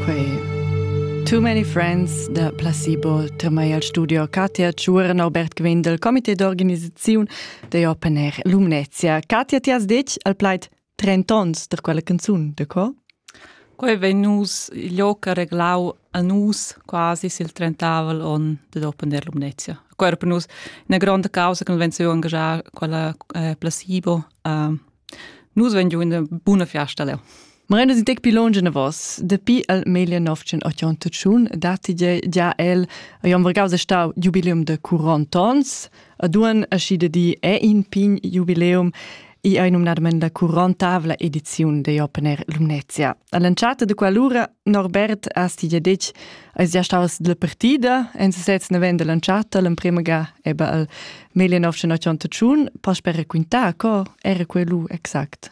Quei Too many friends da placebo temai al studio Katia Tschuren Albert Quinn del Comité d'organisaziun de Open Air Lumnezia. Katia, ti has detg al plaid 30 ons der quella canzun, de co? Quei vegn nus il joc a reglau a nus quasi sil trentavel on de Open Air Lumnezia. Quei era per nus una grande causa che nos ven su angagiar quella eh, placebo. Uh, Nus vegn giu una buna fiasta leu. Marenda si dec pilon genavos, dapi el meglio novcen ottantun datti già el Jon Vergaus è stau jubileum de 40 ans, ad un aschi de di è in pign jubileum e ei numnadament la 40 ediziun de Open Air Lumnezia. All'entschatta de quell'ura Norbert has ti gia detg, eis gia staus dalla partida en sesez navend l'entschatta l'emprema ga eba al 1981 Pasper raquintar co era quei lu exact.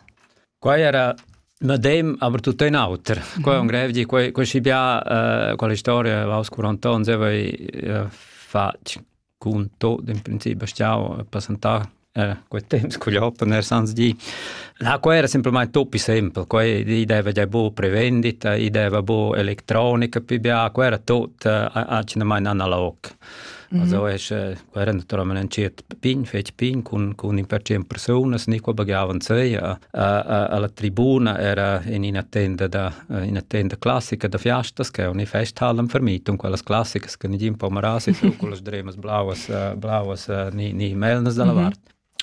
Quai era medem, aber tutto in auter. Qua è un grev di, quei schi bia, quella storia, Vaus 40 ans, aveva fatg cun tot in principi stau a passentar era quei temps cugl open air sans di. La quei era semplamain toppi sempel, quei i deva già bu prevendita, i deva bu electronica pi bia, quei era tot accidamain analog. Mm Also es quei era naturalment ein cert pign, fetg pign cun cun in percent persunas ni qua baghiavan sei a a alla tribuna era in ina tenda da ina tenda classica da fiastas che uni festhallem vermitung quellas classicas che nigin po marasi su con las dremas blauas blauas ni ni melnas dalla mhm. vart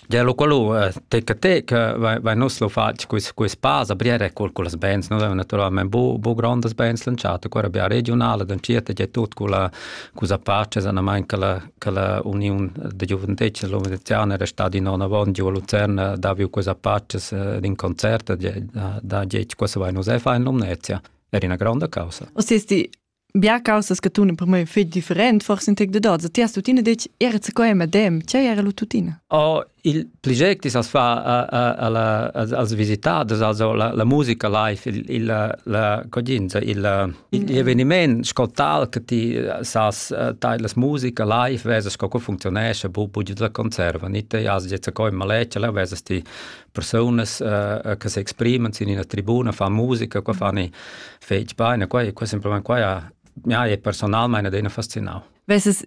Ja, lo quello tecca tecca vai nos lo fatg quis quis pasa briere col con las bands no naturalmente bu bu grandes bands lanciate qua abia regionale dan cirta ja tut con la cosa pace sana manca la che la Uniun da giuventetg l'organisazione era stata in onn avant giu a Lucerna davi questa paces d'un concert da dieci cosa vai nos fa in Lumnezia. Era una grande causa. O sesti Bia causas che tu in primo fai different, forse in tec de doza. Ti has tutina detg, era ce coi madem, ce era lu tutina? Oh, Il pli gec dis as fa als visitaders also la, la musica live, il, il la codinza, il, il eveniment scotal che ti sas tai las musica live vesa sco co funzionesce bu bu da conserva ni te as jetza coi maleccia la vesa sti personas uh, che si esprimen in una tribuna fa musica qua fanni fetg baina qua qua semplicemente qua ja, ja è personal meine dena fascinau. Wes es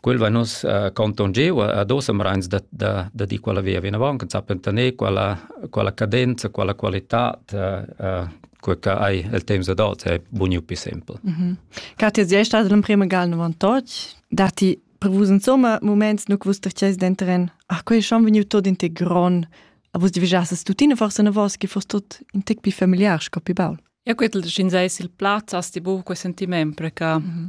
quel va nus uh, conton giu a dos amrains da da da di quella via vinavon che sapen tener quella quella cadenza quella qualità uh, quel che hai il temps adult è buniu più simpel. Mm -hmm. Katia, sei stata l'emprima gal 98, dati prevus insomma moments nu quus terces dentren, ach quei schon vegniu tot in te gron, a vus divigiasses tuttina forse na vos che fost tot in tec più familiar sco più baul. Ja quel schin seis il plaz asti bu quel sentiment pre che mm -hmm.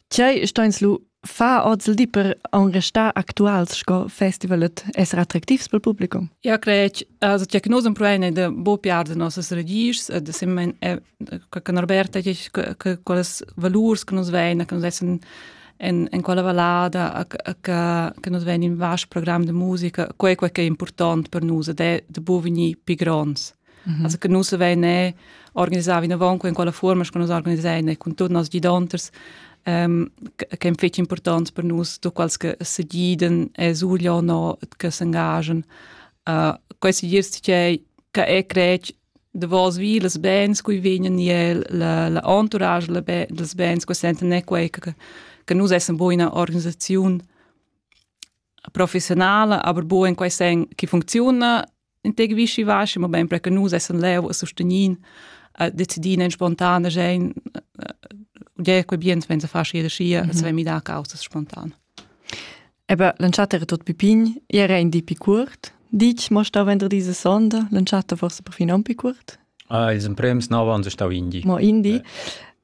Tgei steins lu fa oz il di per aun restar actuals sco festivalet esser attractivs pel publicum? Eu cred also che nos emproene da bo piar da nossas radischs e da simmen che Norberta dice che quelles valurs che nos vein che nos essen in, in quella vallada che, che nos vein in vast program de musica quei quei che è important per nus ed è de bo vegnir pi gronds. Mm -hmm. Also che nus vein e organisau vinavon in quella forma che nus organisein cun tutti nos gidonters um, che è fetg important per nus, tu quals che se giden e surgio no che s'engagen. Uh, questo dirst che che è crec de vos vi les bens cui vegnan el la la entourage la be, les bens que senten ne quei che, che nus essem buona organisaziun professionala, aber buo in quei sen che funziona in te gewischi wasche, ma ben perché nus essen leu a sostenier a decidir en spontane sein ja quei bien wenn se fa jede schia, se wenn mi da causa spontan. Ebe l'entschatta era tot pipin, era in di picurt. Dic, mo stau vender diese sonda, l'entschatta forse perfin un picurt. Ah, is ein prems nova und stau indi. Mo indi.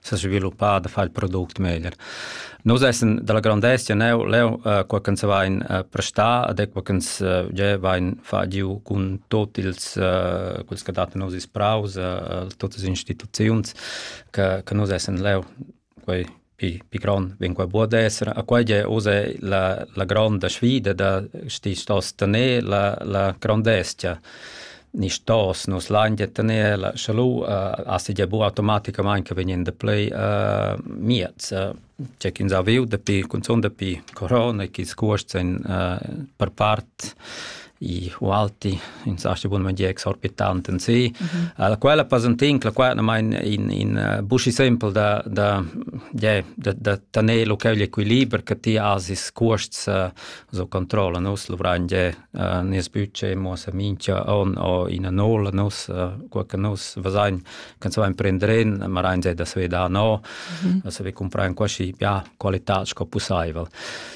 sa sviluppar da far il product meglier. Nus essan dalla grandezia neu leu uh, qua ch'ins vain uh, prestar ed qua ch'ins uh, già vain fa giu cun tot ils uh, quels che datan nos ispraus, uh, totas las instituziuns che, che nus essan leu quei pi, pi grond vegn qua buca d'esser. A quai è usa la, la gronda sfida da sti sto tener la, la grandezia ni stos nus lain gia tener la salud uh, a segia bu automaticamain che vegn da play uh, miez uh, c'è chi ins ha viu dapi cunzun dapi corona che ils cuosts ein uh, per part i alti in sa bun man gi exorbitant in si mm -hmm. la quella pasantin la quella mein in in uh, buschi simpel da da ja da da tener lo quel equiliber che ti has is cuosts uh, so controlla nos luvrain ge uh, nes budget mo sa mincha on o ina nola nos uh, qua che nos vasain can so imprenderen ma rein ge da sve da no mm -hmm. se vi comprain qua si ja qualità sco possibel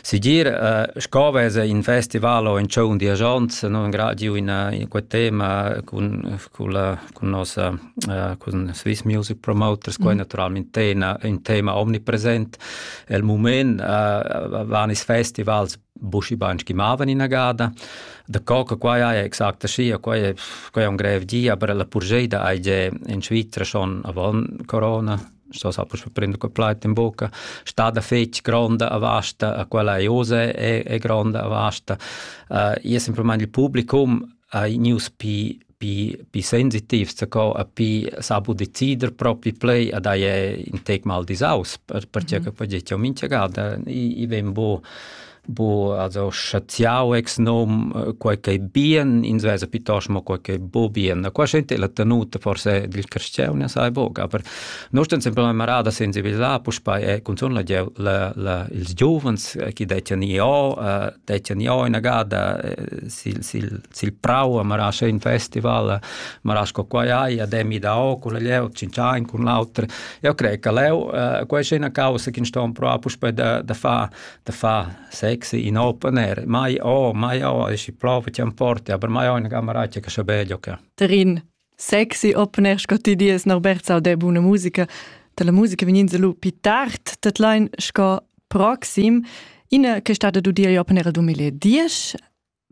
si dir uh, sco vese in festival o in cion di agents non gra giu in in quel tema con culla cun nossa uh, cun Swiss Music Promoters qua mm. naturalmente in, in tema omnipresent el moment uh, van is festivals bushi banch chi mavan in agada da coca qua è exacta scia qua è qua è un grev dia per la purgeida ai je in Svizzera schon avant corona sto sa pur prendo quel pleit in bocca sta da fetg gronda a vasta a quella Jose è, è gronda a vasta uh, io sempre mein il publicum hai gnüs pii pii pii sensitivs zaco a pii sabu decider propi plei a daje ün tec mal disaus per perche che quai giet jo mincha gada. I i ven bu bu also schaziau ex nom quai ch'ei bien, ins vesa piuttost mo quai ch'ei bu bien. Qua sente la tenuta forse dil carstgaun ne sai boc, aber noi stan sempre la marada sensibilisà, puspei è cunzun la gieu- la la ils giuvens chi dettian i o dettan ja ina gada eh, sil sil sil prau a mara schön festival mara sco quai hai a demi da o con leu cincian con l'auter io crei che leu eh, quai è una causa che sto pro puspe da da fa da fa sexy in open air mai o mai o es i prova ti porti aber mai ho una camera che che sche bello che Terin Sexy opener sco ti dies Norbert sau de buna musica da la musica vegnins lu pi tard dat lein sco proxim ina che stat ad udir opener a 2010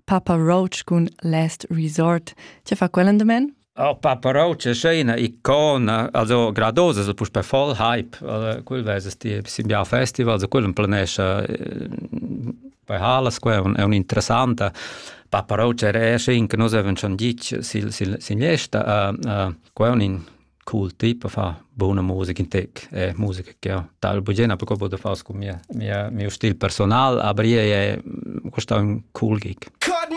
Papa Roach cun Last Resort ti fa quella endamen Oh, Papa Roach è scena icona, also gradosa, so pus per voll hype, quel veses ti, sim bia festival, so quel planescha Poi ha la scuola è un'interessanta pa però c'è resce in che nus avevamo schon dit sil sil signesta a a quon in cool typ fa buona musica in tec è musica che ho tal bugena perché vado far con mia mia mio stil personal aber è è questa un cool gig Cut